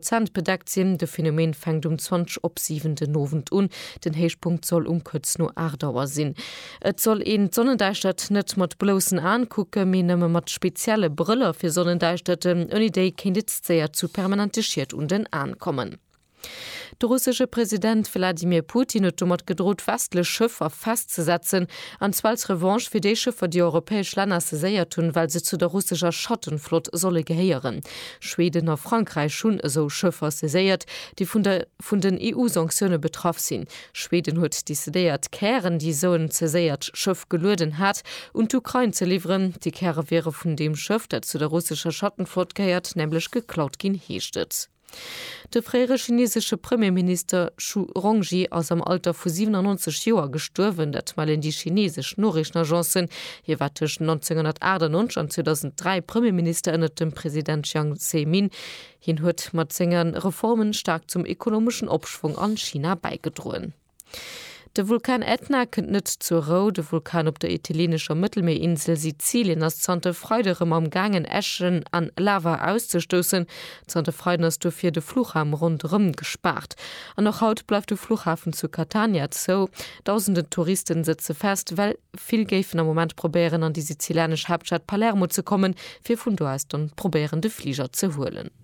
Zänt bedeckt sinn. De Phänomen fänkt um 20 op 7 den Owend un. Den Héichpunkt soll um kuerz no 8 Auer sinn. Et soll een d'Sonnendäischtert net mat bloussen Aen kucken, mee nëmme mat spezielle Brëller fir Sonnendäischterten. Ouni déi kéint et séier zu permanente Schied un den Aen kommen. De russesche President Wladimir Putin huet domat gedrot, westlech Schëffer festzesetzen, an zwar als Revanche fir déi Schëffer, déi europäesch Länner saiséiert hunn, well se zu der russescher Schattenflott solle gehéieren. Schweden a Frankräich hunn esou Schëffer saiséiert, déi vun der vun den EU-Sanktioune betraff sinn. Schweden huet decidéiert, Kären, déi esou en saiséiert Schëff gelueden hat, un d'Ukrain ze liwweren. Déi Käre wiere vun deem Schëff, dat zu der russescher Schattenflott gehéiert, nämlech geklaut ginn, heescht et. De fréiere chinesesche Premierminister Zhu Rongji ass am Alter vu 97 Joer gestuerwen, dat mellen déi chinesesch Noriichtenagencen. Hie war tëscht 1998 an 2003 Premierminister ënnert dem President Jiang Zemin. Hien huet mat senge Reformen staark zum ekonomeschen Opschwong an China bäigedroen. De Vulkan Ätna kënnt net zur Rou. De Vulkan op der italienescher Mëttelmierinsel Sizilien ass zanter Freide rëm am gaangen, Äschen an Lava auszestoussen. Zanter Freiden ass dofir de Fluchraum ronderëm gespaart. An och haut bleift de Fluchhafen zu Catania zou. Dausenden Touristen sëtze fest, well vill géifen am Moment probéieren an déi sizilanesch Haaptstad Palermo ze kommen, fir vun do aus dann probéieren de Fliger ze huelen.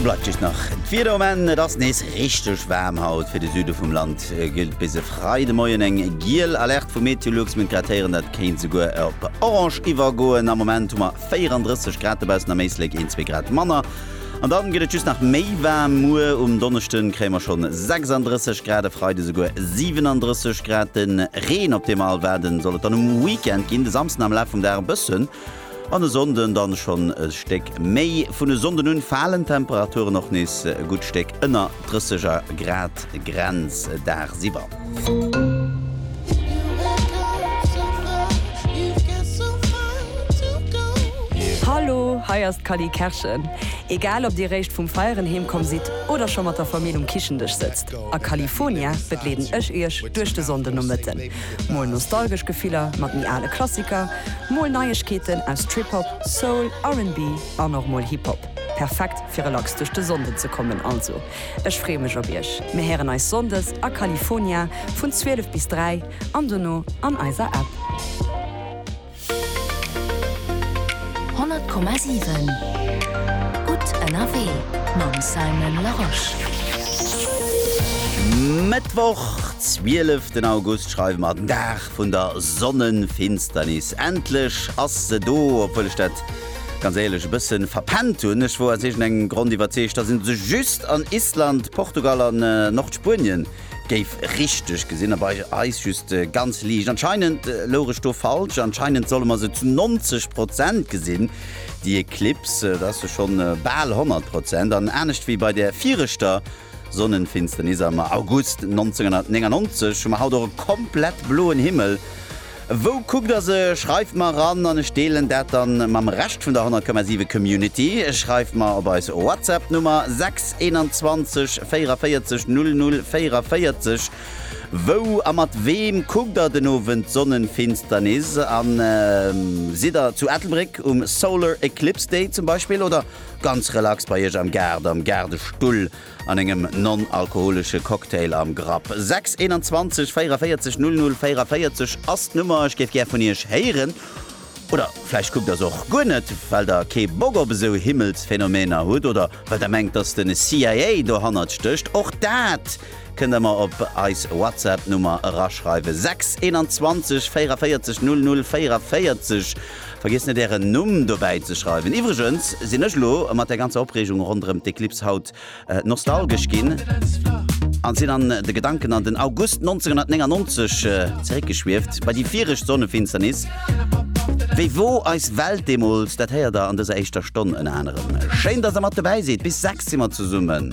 Bleift just nach d'Wieder um Enn, Et ass nees richteg waarm haut. Fir de Süde vum Land gëllt bis e Freidemoien eng giel Alerte vu Meteolux. Meng Krateren, dat kéint esouguer op orange iwwergoen. Am Moment hu mer 34 Grad dobaussen, am Éislek een, zwee Grad manner. An dann gëtt et just nach méi waarm. Muer um Donneschden kréie mer schonn 36 Grad, e Freide esouguer 37 Grad. De Reen, op dee mer all waarden, soll et dann um Weekend ginn. De Samsden am Laf vum Dag e bëssen an e Sonnden dann schonn e Stéck méi. Vun e Sonnden un falen d'Temperaturen och nees e gutt Stéck ënner 30er Grad Grenz dagsiwwer. Hallo, hei ass d'Cally Kerschen. Egal ob dir réischt vum Feieren heem komm sidd oder scho mat der Famill um Kichendësch sëtzt, a California begleeden ech iech duerch de Sonndenomëtten. Mol nostalgesch Gefiller mat méi ale Klassiker, mol Neiegkeeten aus Trip-Hop, Soul, RB an och mol Hip-Hop. Perfekt fir relax duerch de Sonnden ze kommen also. Ech freeë mech op iech. Mir héieren eis Sonndes a California vun 12 bis 3 an dono an eiser App. 100,7 Gutt ënnerwee mam Simon Larosche. Mëttwoch, 12 den August schreiwe mer, den Dag vun der Sonnenfinsternis. Endlech ass se do, obwuel ech dat. Ganz éierlech, e bëssen verpennt hunn ech wor aus iergend engem Grond iwwerzeegt dass een se just an Island, Portugal an Nordspuenien géif richteg gesinn a bei eis just ganz liicht. Anscheinend louch ech do falsch, anscheinend solle mer se zu 90 Prozent gesinn déi Eklips, et ass jo schonn bal 100 Prozent an anescht wéi bei der viireschter Sonnenfinsternis am August 1999 hu mer haut och e komplett bloen Himmel Wou kuckt der se? Schreift mer eran an ech deelen dat dann mam Rescht vun der 100,7 Community. Schreift mer op eis Whatsapp Nummer 6 21 44 00 44 wou a mat weem kuckt der den Owend d'Sonnenfinsternis an sidd der zu Ettelbréck um Solar Eclipse Day zum Beispill oder ganz relax bei iech am Gaart am Gaardestull An engem non-alkoholesche Cocktail am Grapp. 621 44 00 44 ass d'Nummer. Ech géif gär vun Iech héieren. Oder vläicht kuckt Der se och guer net, well Der kee Bock op esou Himmelsphänomener hutt oder well Der mengt, dass de CIA dohannert stécht. Och dat kënnt Der mer op eis WhatsApp-Nummer eraschreiwen, 621 44 00 44. Vergiesst net ären Numm dobäi ze schreiwen. Iwwregens sinn ech elo mat der ganzer Opreegung ronderëm d'Eclipse haut nostalgesch ginn an sinn an de Gedanken an den August 1999 zeréckgeschwieft, bei déi viregt Sonnefinsternis. Wéi wor eis Welt deemools? Dat héiert der an dëser éischter Stonn ënner anerem. Schéin dass der mat dobäi sidd, bis 6 si mer zesummen.